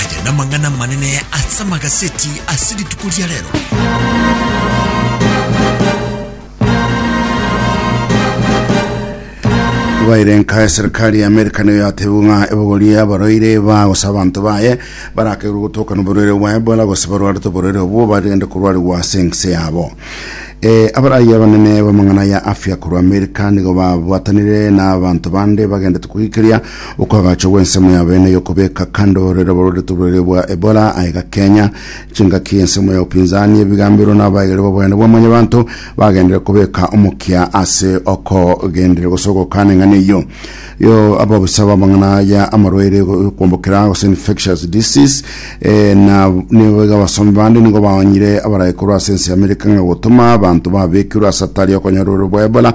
Aya namang'ana amanene ase amagaseti ase rituko ria rero. Baire nka eserikali ya Amerika niyo yatebu ng'a ebogori abaroire bagosa abanto baye barakerwe gotokana oborwere bwa Ebola gose barwarete oborwere obwo bagende korwarigwa ase ense yabo. E, abarayi abanene b'amang'ana ya afya korwa Amerika nigo babwatanire n'abanto bande bagendete koikeria Okoagachwa gw'ensemo y'abene y'okobeka kando rero borore toborere bwa Ebola aye gakenya chingaki ensemo ya upinzani ebigamberwa n'abaegeri b'obonene bwa mwanyabanto bagenderere kobeka omokia ase okogenderera gose ogokana eng'ana eyio yo ababisa b'amang'ana ya amarwaire yokombokera gose infectious disease eh, na nigo iga abasomi bande nigo baonyire abarae korwa ase ense y'Amerika ng'a gotoma abanto babekirwe ase atari okonyora ororo bwa Ebola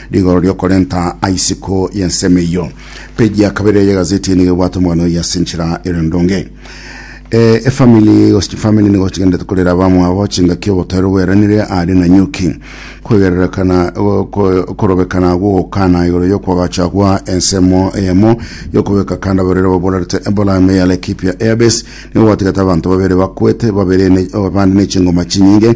Rigoro riokorenta aisiko y'ensemo eyio. Peji ya kabere y'egazeti eye nigo ebwate omogani oyio ase enchera ere ndonge. Eh, efamili gose chifamili nigo chigenderete korera abamwabo chingaki obotaero bweranire aria na Nyuki. Kwegererekana go- ko- okorobekana gogokana igoro y'okwagachagwa ensemo eyemo y'okobeka kanda abarwaire baborarete Ebola ime ya Laikipia Airbase nigo gwatigete abanto babere bakwete, babere ne- abande ne chingoma chinyinge